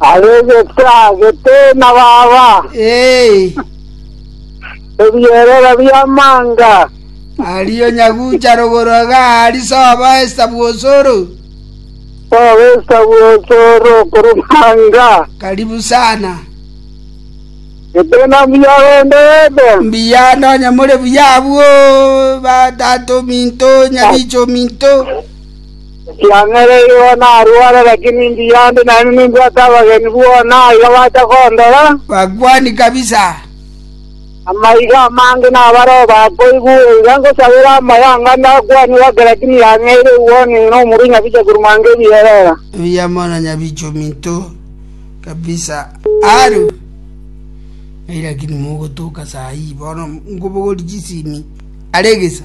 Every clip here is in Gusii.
Aregete agete na baba. Ee, Ebierero bi'amanga. ario nyagucha rogoro iga ari sobo esita bw'osoro, Obesa bw'osoro korumanga. karibu sana. Gete na mbuya rende ebe. Mbuya nonye more buya abwo, batato minto, nyabicho minto. Ekiagera nigo narware, lakini mbuya inde naende nimbwate abageni bono aiga bacha kondora. Bakwani kabisa. Amaiga amange nabareo bakoigwa oiga ngosabera amayanga ande akwani gake, lakini yang'eire igwoni ng'ina omorui nyabicha korwa mwanka ebierera. Mbuya mono nyabicha ominto kabisa. Aro. Ei lakini mogotoka saa hii bono nkobogori chisimi are egesa.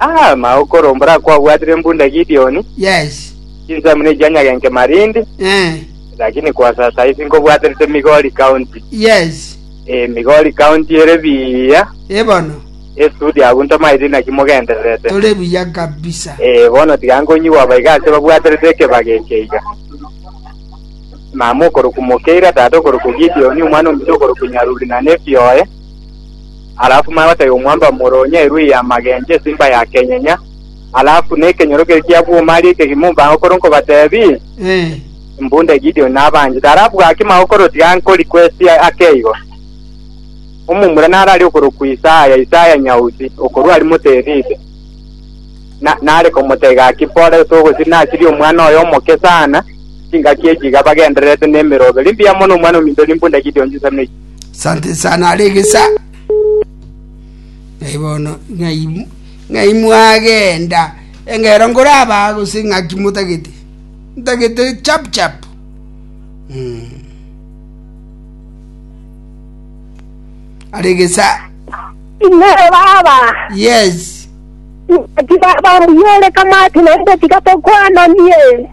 Ah, mao okoro mbora kwabwatire embunda Gideoni, Yes. chinsamu ne chia nyagenke Marindi, Eh. lakini kwa sasa isi nkobwaterete Migori County. Yes. Eh, Migori County ere biya, Ebono. esudi abwo ntomaete inaki mogendererete. Tore buya kabisa. Eh, bono tiga nkonyigwa abaiga ase babwaterete ekebaga eke iga. Mama okoroku Mokeira, tata okoroku Gideoni, omwana omuto okoroku Nyaruri na nephi oye. alafu maya batebe omwando wa moro onya erue ya magencho esimba ya kenyenya, alafu nekenyoro keria kia bwoma aria ekegima ombango kore nkobatebi, Eh, mbunde Gideon nabanchete, alafu gaki magokoro tiga nkori kwesi ake igo. Omomura nare ari okorokwa Isaya, Isaya nyausi, okorua ari moterite. Na, nare komotebia gaki pore gose ogosiri nasiri omwana oyo omoke sana, chingaki echi iga bagendererete nemeroberi mbuya mono omwana ominto rimbunde Gideon chisemi ichi. Sante sana are egesa. Ng'ai bono, ng'ai, ng'ai mwagenda engero nkorabaa gose ng'aki motagete ntagete chap chap mm. aregesa Inere baba. yes Ati baba mbuyore kamati naende tiga tokwananie.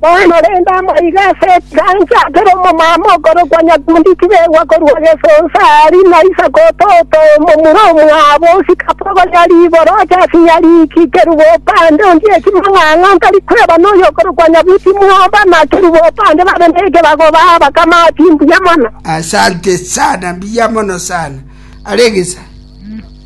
Bono rende amaiga ase ekegancha kere omomama okorokwa nyakundi tibegwa korwa gesonsa aari na isiko ototo omomura omwabo osikape ogonya riiboro oche ase nyariki kerubo opande onde ekimang'ang'a ntari kweba noyo okorokwa nyabuti mwoba na kerubo opande babe nekebago ba abakama ati mbuya mono. Asante sana, mbuya mono sana. Alegisa.